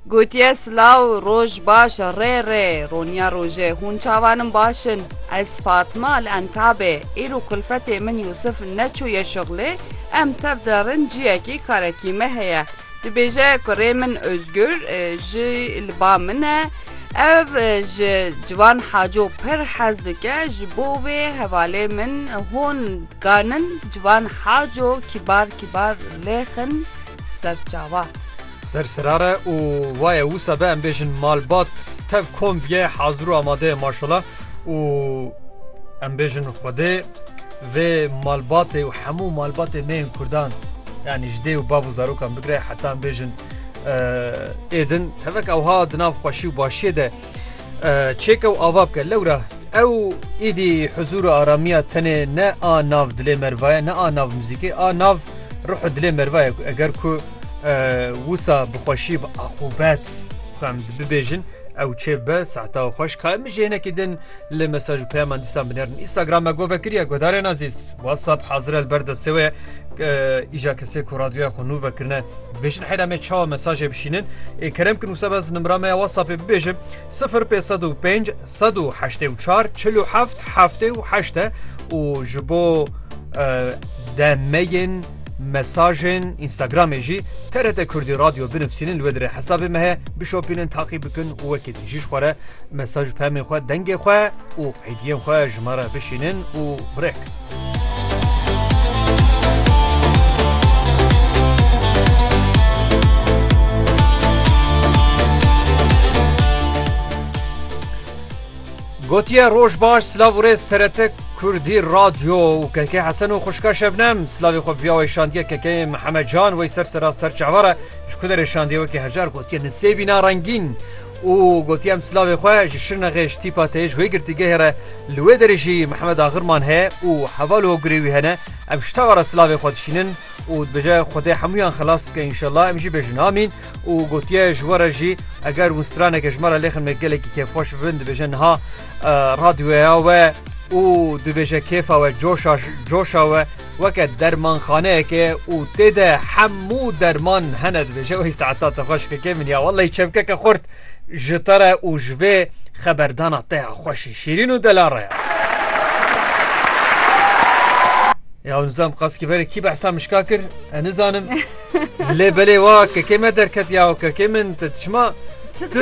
Gotiye silaw roj baş e rê rê roniya rojê hûn çavan in baş in ez Fatma li Entabê îro kulfetê min Yûsif neçûye şixlê em tev de rin ciyekî karekî me heye dibêje kurê min Ozgur ji li ba min e ev ji ciwan haco pir hez dike ji bo wê hevalê min hûn Ganin ciwan haco kîbar kîbar lêxin ser çawa. Ser serare û waye wisa be em bêjin malbat tev komb ye hazir û amade ye maşala û em bêjin xwedê vê malbatê û hemû malbatê me yên kurdan yanî ji dê û bav û zarokan bigre heta em bêjin êdin tevek ewha di nav xweşî û başiyê de Çêke û ava bike lewra ew îdî huzûr û aramiya tenê ne a nav dilê mervaye ne a nav muzîkê a nav ruhu dilê mervaye ku eger ku wisa bi xweşî bi aqubet ku em bibêjin ew çê be sehta û xweş ka min jê hinekî din li mesaj û peyaman dîsan binerin Instagram me gove kiriye guhdarên azîz WhatsApp hazir el ber destê we îja kesê ku radyoya xwe nû vekirine Bêjin heyra me çawa mesajê bişînin. Ê kerem kin wisa bez nimra me ya WhatsAppê bibêjin 0505 184 47 78 e û ji bo demeyên mesajên Instagramê jî TRT Kurdî Radyo binivîsînin li wê dire hesabê me heye bişopînin taqî bikin û wekî din jî ji xwe re mesaj pemên xwe dengê xwe û qeydiyên xwe ji me re bişînin û birêk. Gotiye roj baş silav û rê serete Kurdî radyo û keke hesen û xuşka şebnem silavê xwe viya wê şandiye keke Mihemed Can wey ser sera ser çavara ji ku derê şandiye wekî hejar gotiye nisê bîna rengîn û gotiye em silavê xwe ji Şirnexê ji tîpa tê ji wê girtîgehê re li wê derê jî Mihemed Agirman heye û heval û hogirê wî hene em ji tawa re silavê xwe dişînin û dibêje Xwedê hemûyan xilas bike înşellah em jî bêjin amîn û gotiye ji we re jî eger winstraneke ji me re lêxin me gelekî kêfxweş bibin dibêje niha radyoya we û dibêje kêfa we coşa coşa we Weke dermanxaneyeke û tê de hemû derman hene dibêje wey saeta te xweş keke min ya wellay çemkeke xurt ji te re û ji vê xeberdana te ya xweşî şîrîn û dela re ya. Ya nizam qaskî berê kî behsa mişka kir e nizanim lê belê wa kekê me derket ya kekê min te çima tu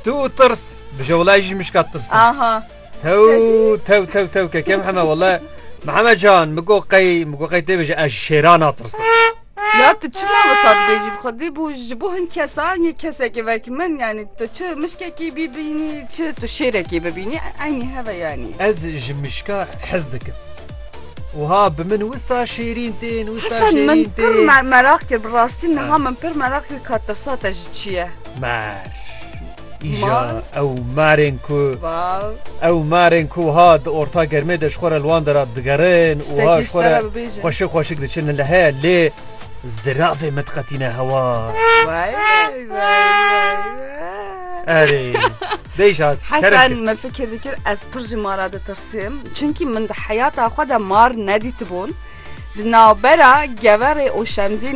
tu û tirs bi jewlay jî mişka tirs. Aha. Tew tew tew tew ke kem heme wele Mihemed can min got qey min got qey tê bêje ez ji şêran natirsim. Ya tu çima wisa dibêjî bi xwedî bû ji bo hin kesan yê kesekê vek min yanî tu çi mişkekî bîbînî çi tu şêrekî bibînî eynî heve yanî. Ez ji mişka hez dikim. Wiha bi min wisa şêrîn tên wisa Hesen min şêrîn pir tê. me- merak kir bi rastî niha min pir merak kir ka tirsa te ji çi ye. Mer. Îja ew marên ku ew marên ku wiha di orta germê de ji xwe re li wan dera digerin û wiha ji xwe re xweşik xweşik diçin li heye lê ziravê me diqetîne hewa. Erê Bêj hat Hesen me fikir dikir ez pir ji mara ditirsim çunkî min di heyata xwe de mar nedîtibûn di navbera geverê û şemzîna